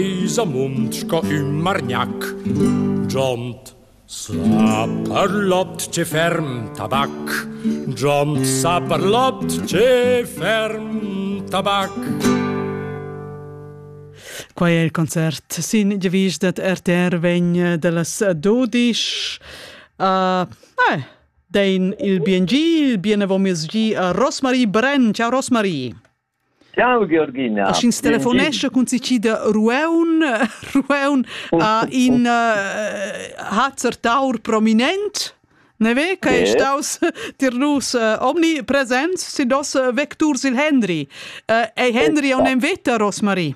Vis amunt sco ün margnac, giond sa per lot che ferm tabac, giond sa per lot che ferm tabac. Quai è il concert sin devis dat RTR vegn de las Dodisch. Uh, eh, dein il bien il bien avon mes gi a Rosmarie Brenn. Ciao Rosmarie. Ciao Georgina. A sch'ins telefonescha cun si da Rueun, Rueun a in uh, Hazar Taur prominent. Ne ve che è staus tir nus uh, omni presents si dos uh, vecturs il Henry. Uh, ei Henry on en veta Rosmarie.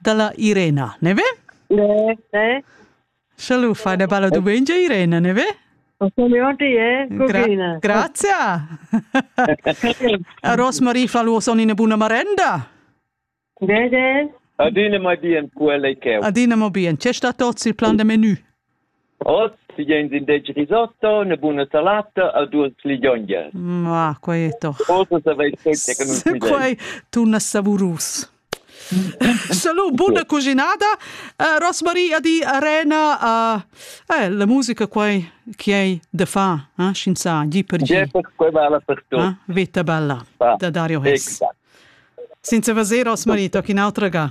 Dalla Irena, ne ve? Ne, ne. Schalu fa da balla dumengia Irena, ne ve? Gra grazie. Rosmarie fa lu son ina buna marenda. Ne, ne. Adina ma bien quella che. Adina ma bien. C'è sta tot il plan de menù? Oz vegn indesch risotto, una buna salata e duas liglionjas. Ma, quai è toch... Cosa saveis fetg che non si Quai torna savurus. Salut, buona cucinada. Uh, Rosmarie di Arena, uh, eh, la musica quai che hai da fare, eh? scienza, di per di. Quai vale per tutto. Eh? Vita bella, ah, da Dario Hess. Exact. Senza fazer, Rosmarie, tocchi un'altra ga.